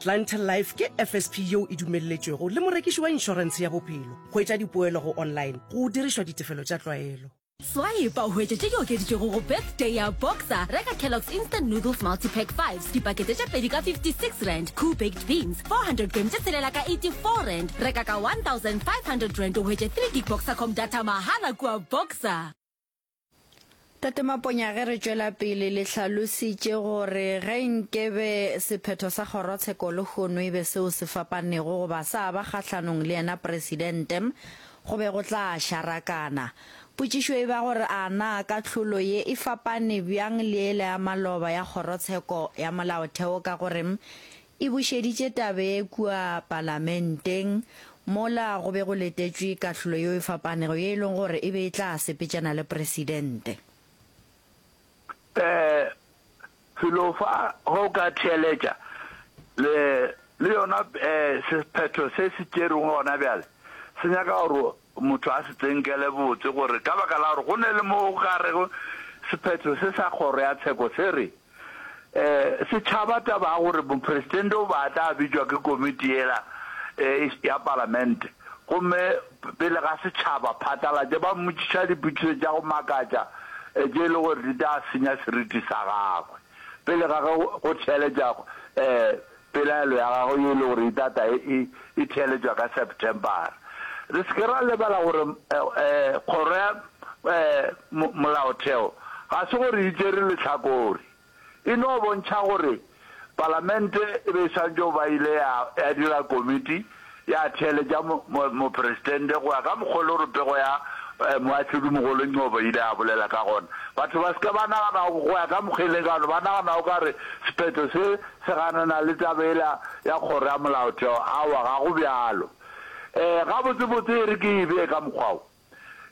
Clientele Life ke FSP yeo e dumelletšwego le morekiši wa inšorense ya bophelo. Hwetša dipoelo go online go dirišwa ditefelo tša tlwaelo. Swaepa o hwetše tše di okeditšwego go Birthday ya Boxer, reka Kellogg's Instant Noodles Multipack Fives, dipakete tše pedi ka R56, Koo Baked Beans, 400 grame tše tshelela ka R84, reka ka R1,500 o hwetše three gig Boxer Com data mahala kua Boxer. Tate Maponya ge re tšwela pele le hlalositše gore ge nkebe sephetho sa kgorotsheko lehono e be seo se fapanego goba sa ba kgahlanong le yena Presidente, go be go tla šarakana. Potšišo e ba gore a na kahlolo ye e fapane bjang le yela ya maloba ya kgorotsheko ya molaotheo ka gore e bušeditše tabe kua Palamenteng mola go be go letetšwe kahlolo yeo e fapanego ye e lego gore e be e tla sepetšana le Presidente. Ee, felo fa ge o ka theeletša le, le yona ee, sephetho se se tšerwego gona bjale se nyaka gore Motho a se tsenkele botse gore ka baka la gore go ne le mo gare sephetho se sa kgoro ya tsheko se re, Setšhaba taba ya gore Mopresidente o be a tla bitšwa ke komiti yela ya Palamente gomme pele ga setšhaba phatlalatše ba mmotšiša dipotšišo tša go makatša tše e le gore di tla senya seriti sa gagwe pele ga ge go theeletša Pelaelo ya gagwe ye e lego gore itata e, e, e theeletšwa ka Septembara. Re se ke ra lebala gore Kgoro ya Molaotheo ga se gore e tšere lehlakore. E no bontšha gore Palamente e be e swanetše go ba ile ya, ya dira komiti, ya theeletša Mopresidente go ya ka mokgwa o lego pego ya Moahlodimogolo Ngcobo e ile ya bolela ka gona. Batho ba se ke ba nagana go ya ka mokgwa e leng ka gona, ba nagana o ka re sephetho se se ganana le taba yela ya Kgoro ya Molaotheo. Aowa, ga go bjalo. Ee, gabotsebotse e re ke e bee ka mokgwa wo,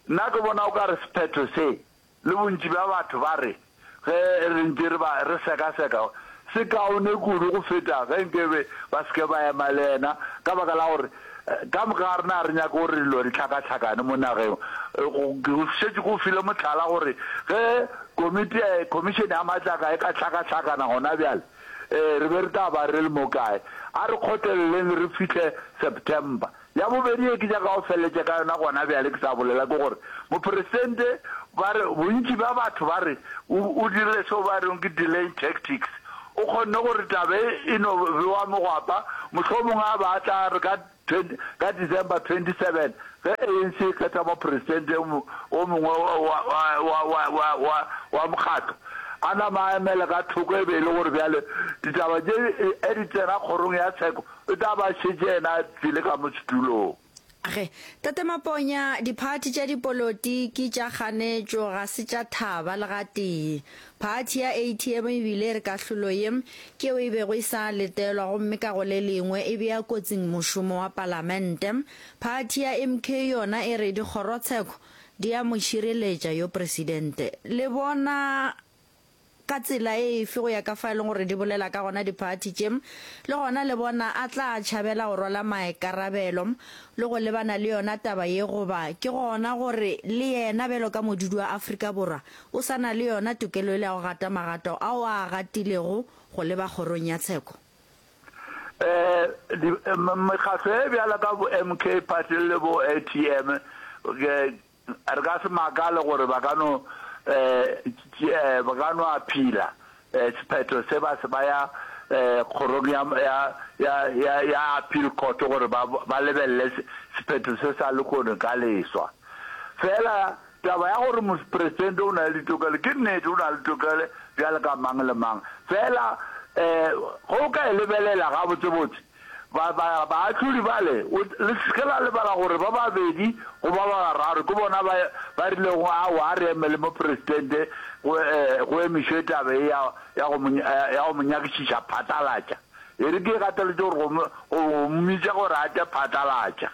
nna ke bona o ka re sephetho se, Le bontši bja batho ba re, Ge re ntše re ba re sekaseka, se kaone kudu go feta ge nke be ba se ke ba ema le yena, ka baka la gore ka moka ga rena ga re nyake gore dilo di hlakahlakane mo nageng. Ke go šetše ke go file mohlala gore ge komiti, Khomišene ya Matlaka e ka hlakahlakana gona bjale, re be re tla ba re le mo kae. A re kgotleleleng re fihle September. Ya bobedi ye ke nyaka go feleletša ka yona gona bjale ke sa bolela ke gore Mopresidente ba re, bontši bja batho ba re o, o dirile seo ba rego ke delaying tactics. O kgonne gore taba ye e no bewa mogwapa, mohlomongwe a ba a tla re ka, ka December 27 ge ANC e kgetha Mopresidente wo mongwe wa, wa, wa, wa, wa, wa mokgatlo, a nama a emele ka thoko e be e le gore bjale ditaba tše e di tsena kgorong ya tsheko O tla ba šetše yena a tsele ka mo setulong. Ge, Tate Maponya, diphathi tša dipoloti ki tša kganetšo, ga se tša thaba le gatee. Phathi ya ATM e bile e re kahlolo ye, ke yeo e bego e sa letelwa gomme ka go le lengwe e bea kotsing mošomo wa Palamente. Phathi ya MK yona e re dikgorotsheko di a mo šireletša yo Presidente. Le bona Ka tsela efe? Go ya ka fa e leng gore di bolela ka gona diphathi tše, le gona le bona a tla tšhabela go rwala maikarabelo le go lebana le yona taba ye goba ke gona gore le yena bjalo ka modudi wa Afrika Borwa o sa na le yona tokelo yela ya go gata magato ao a a gatilego go leba kgorong ya tsheko? Ee, mekgatlo e bjalo ka bo MK Party le bo ATM Re ka se makale gore ba ka no ba ka no aphila sephetho se ba se baya kgorong ya ya ya ya ya appeal court gore ba ba lebelele sephetho se sa lekono ka leswa. Fela taba ya gore Mopresidente o na le ditokelo ke nnete, o na le tokele bjale ka mang le mang. Fela ge o ka e lebelela gabotsebotse, Ba, ba, baahlodi bale, o, le se ke la lebala gore ba babedi goba ba bararo ke bona ba, ba rilego, Aowa, a re emele Mopresidente go, e, go emišwe taba ye ya, ya go mo, ya, ya go mo nyakišiša phatlalatša. E re ke e gateletše gore go, go, go mmitša gore a tle phatlalatša.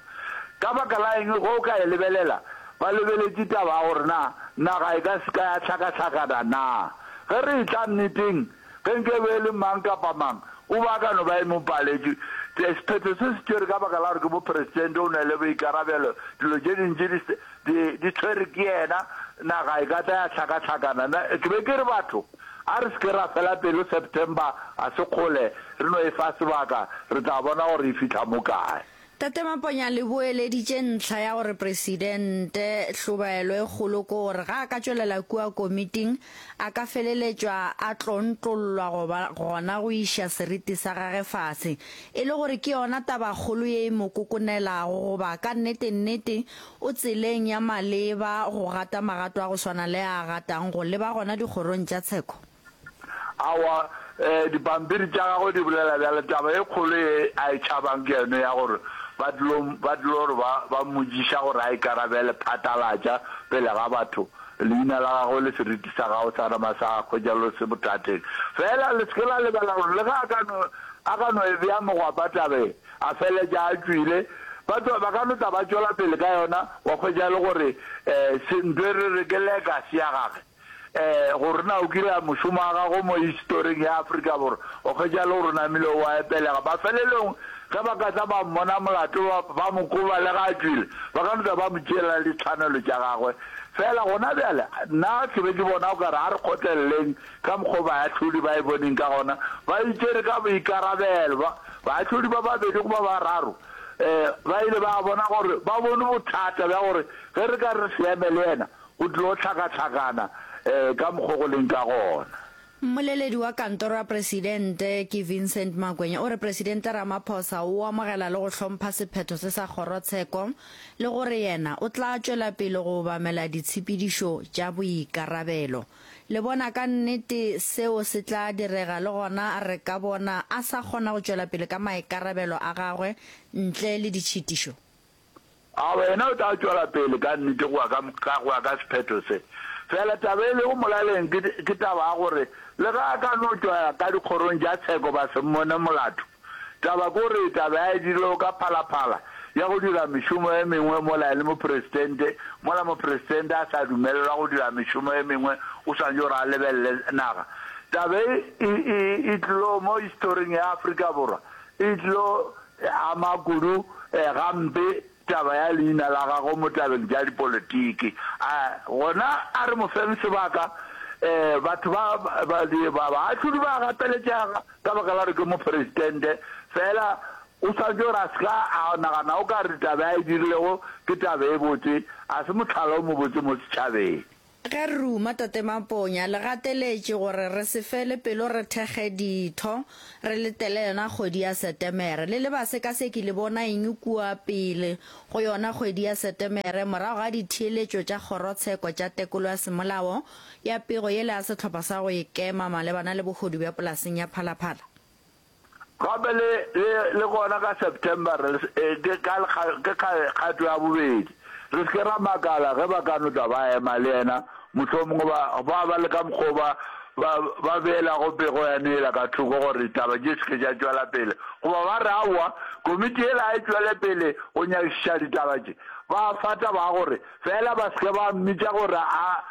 Ka baka la eng ge o ka e lebelela? Ba lebeletše taba ya gore na naga e ka se ka ya hlakahlakana na. Ge re etla nneteng, Ge nke be e le mang kapa mang o be a ka no ba e mo paletše. Tee, sephetho se se tšere ka baka la gore ke moperesitente o na le boikarabelo, dilo tše dintši di, di, di tšhwere ke yena, naga e ka tla ya hlakahlakana. Na, ke be ke re, batho, a re se ke ra fela pelo, September ga se kgole, re no e fa sebaka, re tla bona gore e fihla mo kae. Tate Maponya le boeleditše ntlha ya gore Presidente hlobaelo e kgolo ke gore ga a ka tšwelela kua komiting a ka feleletšwa a tlontlollwa goba gona go iša seriti sa gage fase, e le gore ke yona tabakgolo ye e mo kokonelago goba ka nnete nnete o tseleng ya maleba go gata magato a go swana le a a gatang go leba gona dikgorong tša tsheko. Aowa, dipampiri tša gagwe di bolela bjalo. Taba e kgolo ye a e tšhabang ke yone ya gore ba tlilo, ba tlilo re ba, ba mmotšiša gore a ikarabele, phatlalatša pele ga batho leina la gagwe le seriti sa gago sa nama sa gagwe, jalo se bothateng. Feela le se ke la lebala gore le ge a ka no, a ka no e bea mogwapa taba ye, a feletša a tšwile, batho ba ka no tla ba tšwela pele ka yona, wa hwetša e le gore se, ntho e re re ke legacy ya gagwe. Ee, gore na o kile a mošomo wa gago mo historing ya Afrika Borwa, o kgetša le gore o namile o a epelega. Mafelelong, ge ba ka tla ba mmona molato, ba, ba mo koba le ge a tšwile, ba ka no tla ba mo tšeela le ditshwanelo tša gagwe. Feela gona bjale, nna ke be ke bona o ka re a re kgotleleleng ka mokgwa o baahlodi ba e boneng ka gona. Ba itšere ka boikarabelo. Ba, baahlodi ba babedi goba ba bararo ba ile ba bona gore ba bone bothata bja gore ge re ka re re se eme le yena, Go tlo hlakahlakana ka mokgo go leng ka gona. Mmoleledi wa kantoro ya presidente ke Vincent Makwenya o re presidente Ramaphosa o amogela le go hlompha sephetho se sa kgorotsheko le gore yena o tla tšwela pele go obamela ditshepedišo tša boikarabelo. Le bona ka nnete seo se tla direga le gona re ka bona a sa kgona go tšwela pele ka maikarabelo a gagwe ntle le ditšhitišo. A wena o tla tšwela pele ka nnete go ya ka sephetho se? Fela taba e lego molaleng ke taba ya gore le ge a ka no tšwa ka dikgorong tša tsheko ba se mmone molato, taba ke gore taba ya e dirilego ka phalaphala ya go dira mešomo e mengwe mola e le mopresidente, mola mopresidente a sa dumelelwa go dira mešomo e mengwe o swanetše gore a lebelele naga. Taba e e tlilego mo historing ya Afrika Borwa e tlilo E ama kudu gampe taba ya leina la gagwe mo tabeng tša dipolotiki. A gona a re mo feng sebaka? Batho ba baahlodi ba a gapeletšega ka baka la gore ke moperesidente, fela o swanetše gore a se ka a nagana o ka re taba a e dirilego ke taba e botse, a se mohlala o mobotse mo setšhabeng. Ge re ruma Tate Maponya, le gateletše gore re se fele pelo re thekge ditho, re letele yona kgwedi ya Setemere. Le le basekaseki le bona eng kua pele go yona kgwedi ya Setemere morago ga ditheeletšo tša Kgorotsheko tša Tekolo ya Semolao ya pego yela ya Sehlopha sa go Ikema malebana le Bohodu bja Polaseng ya Phalaphala? Gape le, le, le gona ka September re, ke ka, ke ka kgato ya bobedi. Re se ke ra makala ge ba ka no tla ba ema le Yena, mohlomongwe ba, ba, ba le ka mokgwa wo ba, ba, ba beelago pego ya nela ka thoko gore ditaba di se ke tša tšwela pele, goba ba re, Aowa, komiti yela ga e tšwele pele go nyakišiša ditaba tše. Ba a fata ba gore, Feela ba se ke ba mmitša gore a,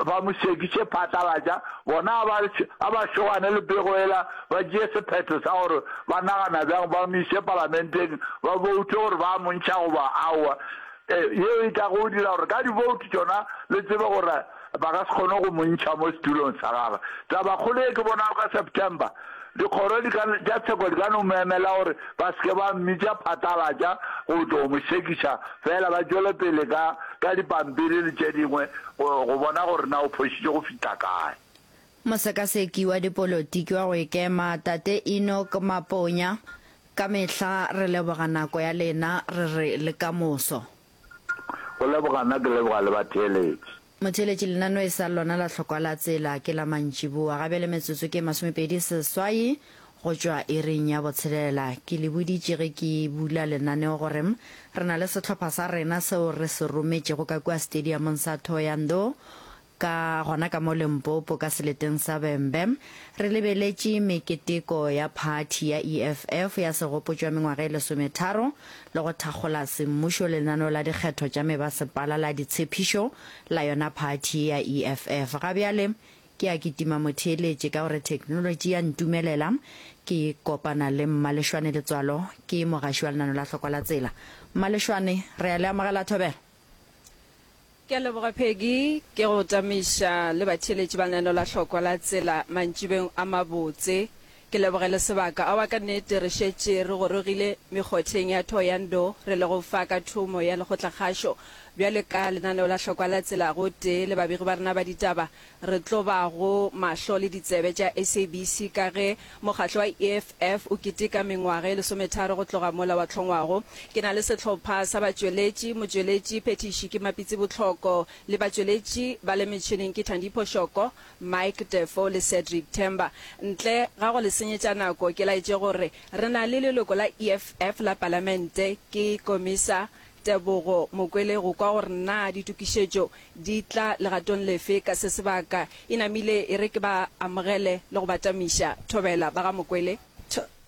Ba mo šekiše phatlalatša, bona a ba, a ba šogane le pego yela, ba tšee sephetho sa gore ba nagana bjang, ba mo iše palamenteng, ba boute gore ba a mo ntšha goba aowa. E, yeo e tlago go dira gore ka diboutu tšona le tsebe gore ba ka se kgone go mo ntšha mo setulong sa gagwe. Tabakgolo ye ke bonago ka September. Dikgoro di ka, tša tsheko di ka no mo emela gore ba se ke ba mmitša phatlalatša go tlo mo sekiša, feela ba tšwele pele ka, ka dipampiri le tše dingwe, go, go bona gore na o phošitše go fihla kae. Mosekaseki wa dipolotiki wa go ikema, Tate Enoch Maponya, Ka mehla re leboga nako ya lena, re re le kamoso. Go leboga nna ke leboga le batheeletši. Motheeletši lenanoe sa lona la Hlokwa la Tsela ke la mantšiboa ga bjale metsotso ke masomepedi seswai go tšwa iring ya botshelela. Ke le boditše ge ke bula lenaneo gore re na le sehlopha sa rena seo re se rometšego ka kua stadiumong sa Thohoyandou Ka gona ka mo Limpopo ka seleteng sa Bembe, re lebeletše meketeko ya phathi ya EFF ya segopotšo ya mengwaga e lesometharo le go thakgola semmušo lenaneo la dikgetho tša mebasepala la ditshephišo la yona phathi ye ya EFF. Ga bjale ke a kitima motheeletše ka gore theknolotši ya ntumelela ke kopana le Mmalešwane Letswalo, ke mogaši wa lenaneo la Hlokwa la Tsela. Mmalešwane, re a le amogela Thobela. Ke a leboga Peggy, ke go tamiša le batheeletši ba lenaneo la Hlokwa la Tsela mantšibeng a mabotse. Ke leboge le sebaka. Aowa ka nnete re šetše re gorogile mekgotheng ya Thohoyandou re lego fa ka thomo ya lekgotlakgašo. Bjale ka lenaneo la Hlokwa la Tsela gotee le babegi ba rena ba ditaba Re tlo ba go mahlo le ditsebe tša SABC ka ge mokgatlo wa EFF o keteka mengwaga e lesometharo go tloga mola wa hlongwago. Ke na le sehlopha sa batšweletši, motšweletši phethiši ke Mapitsi Botlhoko le batšweletši ba le metšhineng ke Thandipho Shoko, Mike Defoe le Cedric Themba. Ntle ga go le senyetša nako ke laetše gore re na le leloko la EFF la Palamente ke Komisa Tebogo Mokwele go kwa gore na ditokišetšo di tla legatong lefe ka se sebaka, e namile e re ke ba amogele le go ba tamiša. Thobela ba ga Mokwele.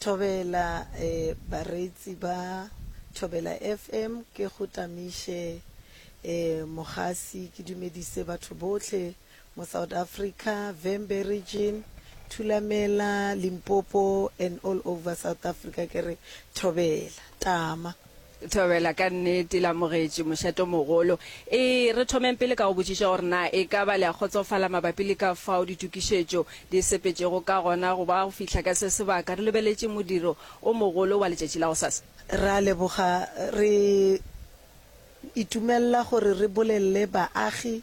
Thobela, Ee, bareetsi ba Thobela FM ke go tamiše, ee, mogasi ke dumedise batho bohle. mo South Africa, Vhembe Region, Thulamela, Limpopo and all over South Africa ke re thobela, tama. Thobela ka nnete le amogetše mošatomogolo. E, re thomeng pele ka go botšiša gore na e ka ba le a kgotsofala mabapi le ka fao ditokišetšo di sepetšego ka gona go ba go fihla ka se sebaka re lebeletše modiro o mogolo wa letšatši la gosasa. Re a leboga. Re itumelela gore re bolelele baagi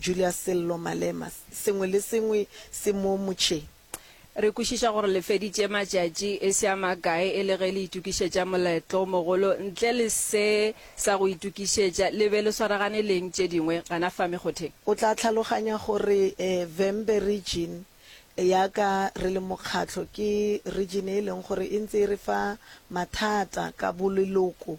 Julius Sello Malema, Sengwe le sengwe se mo motšheng. Re kwešiša gore le feditše matšatši e se a makae e le ge le itokišetša moletlo o mogolo. Ntle le se sa go itokišetša, le be le swaragane le eng tše dingwe gana fa mekgotheng? O tla tlhaloganya gore Vhembe Region ya ka re le mokgatlo ke region e leng gore e ntse e re fa mathata ka boleloko.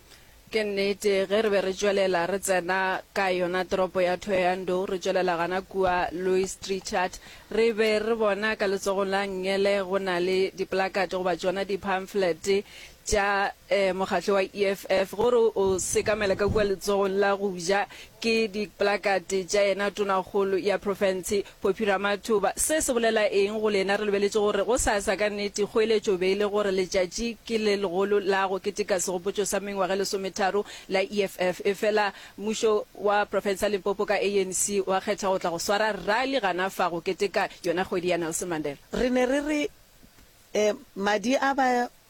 Ke nnete, ge re be re tšwelela re tsena ka yona toropo ya Thohoyandou, re tšwelela gana kua Louis Trichardt, re be re bona ka letsogong la Ngele go na le diplakate goba tšona diphamflete tša eh, mokgatlo wa EFF, gore o sekamela ka kua letsogong la go ja, ke diplakate tša yena tonakgolo ya profense, Poppy Ramathuba, Se se bolela eng go lena? Re lebeletše gore gosasa ka nnete kgoeletšo be e le gore letšatši ke le legolo la go keteka segopotšo sa mengwaga e lesometharo la EFF. Efela mmušo wa profense ya Limpopo ka ANC wa kgetha go tla go swara rally gana fa go keteka yona kgwedi ya Nelson Mandela. Re ne re re, Madi a ba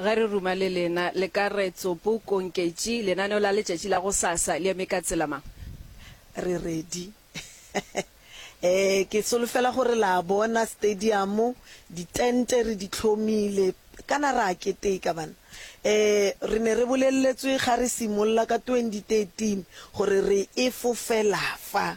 Ge re ruma le lena, le ka re tsopo konketši lenaneo la letšatši la gosasa. Le eme ka tsela mang? Re ready. Ee, ke solofela gore la bona stadiamo, ditente re di hlomile. Kana ra keteka, bana? Ee, re ne re boleletswe ge re simolola ka 2013 gore re e fofela fa.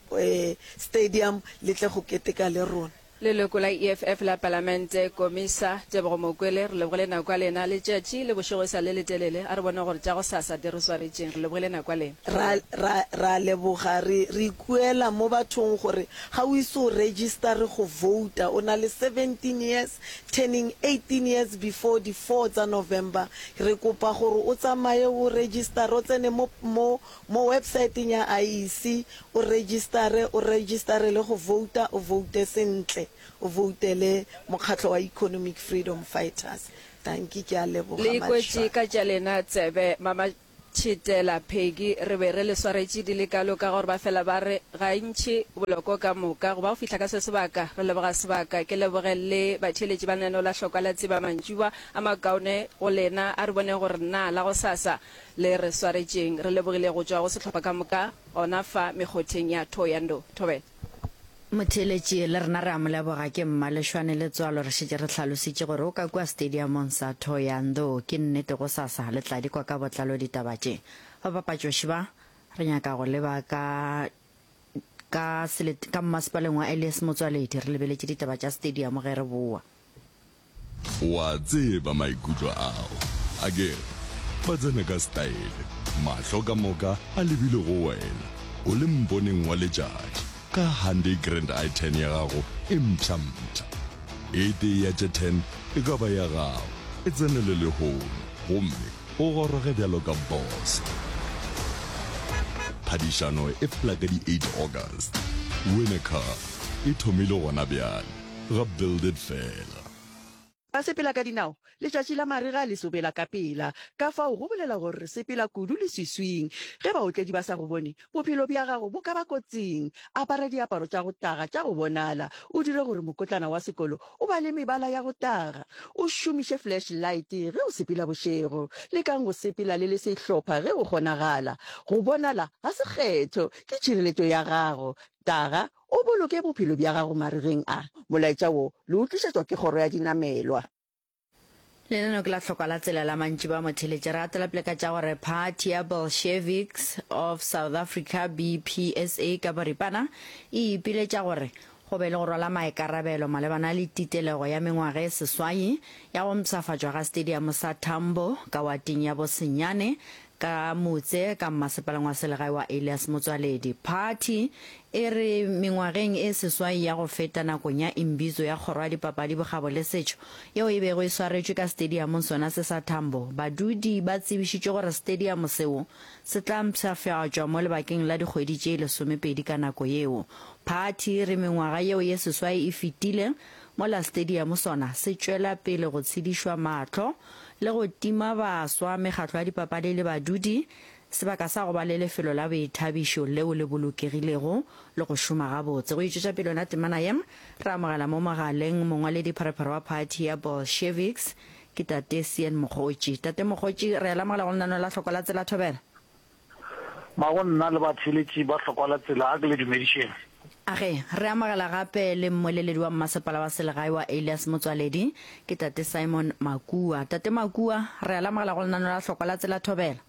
Stadium le tle go keteka le rona. Leloko la EFF la Palamente, Komisa Tebogo Mokwele, re lebogile nako ya lena. Letšatši le bošego e sa le letelele, a re bone gore tša gosasa di re swaretšeng. Re lebogile nako ya lena. Ra, ra, ra a leboga. Re, re ikuela mo bathong gore ga o ise o registare go vouta, o na le 17 years, turning 18 years before di four tsa November. Re kopa gore o tsamaye o registare, o tsene mo, mo Mo websaeteng ya IEC, o rejistare, o rejistare le go vouta, o voute sentle, o voutele Mokgatlo wa Economic Freedom Fighters. Dankie, ke a leboga. Le ikwetše ka tša lena tsebe mama Tšhitela, Peggy, re be re le swaretše di le kalo ka gore ba fela ba re gantši boloko ka moka go ba go fihla ka se sebaka. Re leboga sebaka, ke leboge le batheeletši ba Neno la Hlokwa la Tseba mantšiboa a makaone go lena a re boneng gore naa la gosasa le re swaretšeng, re lebogile go tšwa go sehlopha ka moka gona fa mekgotheng ya Thohoyandou. Thobela. Motheeletši, le rena re a mo leboga. Ke Mmaleshwane Letsoalo, re šetše re hlalositše gore o ka kua stadiamong sa Thohoyandou. Ke nnete gosasa le tla di kwa ka botlalo ditaba tše. Babapatšoši ba, re nyaka go le ba ka ka selet ka mmasepaleng wa Elias Motsoaledi, re lebeletše ditaba tša stadiamo ge re bowa. O a tseba maikutlo ao, akere? Ba tsena ka setaele, mahlo ka moka a lebile go wena, o le mponeng wa letšatši, ka Hyundai Grand i10 ya gago e mpsha-mpsha. E tee ya tše ten e ka ba ya gago, e tsenele lehono gomme o goroge bjalo ka bose. Phadišano e fela ka di eight August. Win a Car e thomile gona bjale. ga Buildit fela. Basepelakadinao, letšatši la marega le sobela ka pela, ka fao go bolela gore re sepela kudu leswiswing. Ge baotledi ba sa go bone, bophelo bja gago bo ka ba kotsing. Apara diaparo tša go taga tša go bonala, o dire gore mokotlana wa sekolo o ba le mebala ya go taga, o šomiše flash light ge o sepela bošego. Lekang go sepela le le sehlopha ge go kgonagala. Go bonala ga se kgetho, ke tšhireletšo ya gago. Taga O boloke bophelo bja gago maregeng a. Molaetša wo le o tlišetšwa ke Kgoro ya Dinamelwa. Lenaneo ke la hlokwa la tsela la mantši ba motheletše. Re atela pele ka tša gore Phathi ya Bolsheviks of South Africa, BPSA, ka boripana e ipiletša gore go be le go rwala maikarabelo malebana le titelego ya mengwaga e seswai ya go mpshafatšwa ga stadium sa Tambo ka wating ya Bosenyane Ka motse ka mmasepaleng wa selegae wa Elias Motswaledi, phathi e re mengwageng e seswai ya go feta nakong ya Imbizo ya Kgoro ya Dipapadi, Bokgabo le Setšo yeo e bego e swaretšwe ka stadiamong sona se sa Tambo, badudi ba tsebišitšwe gore stadiamo seo se tla mpshafatšwa mo lebakeng la dikgwedi tše lesomepedi ka nako yeo. Phathi e re mengwaga yeo ye seswai e fetile, Mola stadium sona se tšwela pele go tshedišwa mahlo le go tima baswa, mekgatlo ya dipapadi le badudi, sebaka sa go ba le lefelo la boithabišo leo le bolokegilego le go šoma gabotse. Go itšwetša pele yona temana ye, re amogela mo mogaleng mongwaledi pharephare wa phathi ya Bolsheviks, ke Tate Sean Mokgotši. Tate Mokgotši, re a le amogela go lenaneo la Hloko la Tsela Thobela. Ba go nna le batheeletši ba hlokwa la tsela, a ke le dumedišeng. Age, re amogela gape le mmoeleledi wa mmasepala wa selegae wa Alias Motswaledi, ke Tate Simon Makua. Tate Makua, re a le amogela go lenaneo la Hlokwa la Tsela Thobela.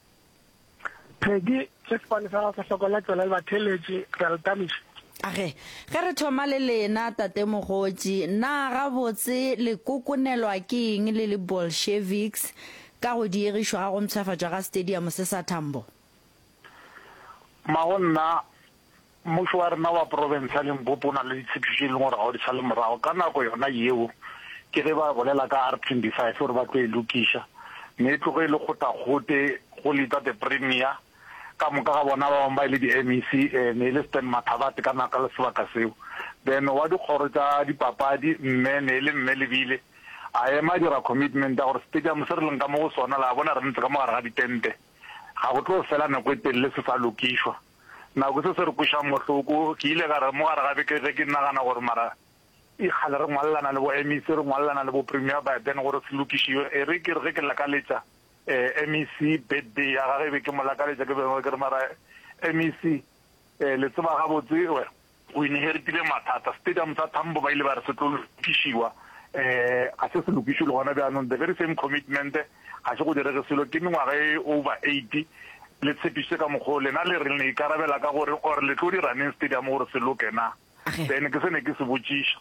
Peggy, sefofane sa gago sa Hlokwa la Tsela le batheeletši, re a le thabiša. Age, ge re thoma le lena, Tate Mogotši, na gabotse le kokonelwa ke eng le le Bolsheviks? Ka go diegišwa ga go mpshafatšwa ga stadium se sa Tambo. Mma go nna, mmušo wa rena wa profense ya Limpopo o na le ditshephišo tše e leng gore ga o di sale morago. Ka nako yona yeo ke ge ba bolela ka R25 gore ba tlo e lokiša, mme e tloge e le kgotakgote go leta the premier. ka moka ga bona ba bangwe ba e le di-MEC, e ne e le Stan Mathabathe ka nako le sebaka seo, then wa dikgoro tša dipapadi mme ne e le Mme Lebile a ema a dira commitment ya gore stadium se re leng ka mo go sona la bona re ntse ka mo gare ga ditente ga go tlo fela nako e telele se sa lokišwa. Nako se se re kwešang bohloko ke ile ka re mo gare ga beke ge ke nagana gore mara e kgale re ngwalelana le bo-MEC re ngwalelana le bo-Premier by then gore se lokišiwe e re ke re ge ke lakaletša MEC, Birthday ya gage e be ke mo lakaletša, ke bego ke re, Mara MEC, le tseba gabotse o inheritile mathata. Stadium sa Tambo ba ile ba re se tlo lokišiwa, ga se se lokišwe le gona bjanong. The very same commitment, ga se go direge selo. Ke mengwaga e over eighty le tshepišitše ka mokgwa wo, lena le re le ikarabela ka gore or le tlo dira neng stadium gore se loke na? Ge. Then ke se ne ke se botšiša.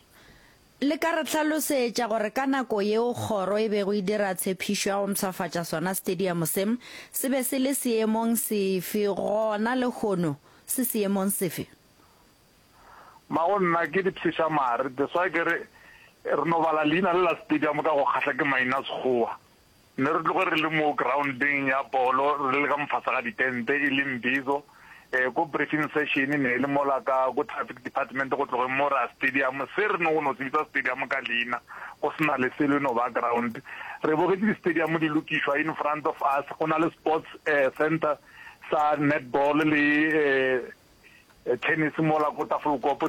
Le ka re hlalosetša gore ka nako yeo kgoro e bego e dira tshephišo ya go mpshafatša sona stadium se, se be se le seemong sefe, gona lehono se seemong sefe? Ma go nna ke dipshiša mare that's why ke re re no bala leina le la stadium ka go kgahla ke mainasekgowa. Ne re tloge re le mo groundeng ya bolo re le ka mofasa ga ditente e le Mbizo. Ko briefing session ne e le mola ka ko traffic department go tlogeng mo ra stadium se re no go no se bitsa stadium ka leina go se na le selo e no ba ground. Re bogetše di stadium di lokišwa in front of us go na le sports center sa netball le tennis mola ko Tafelkop.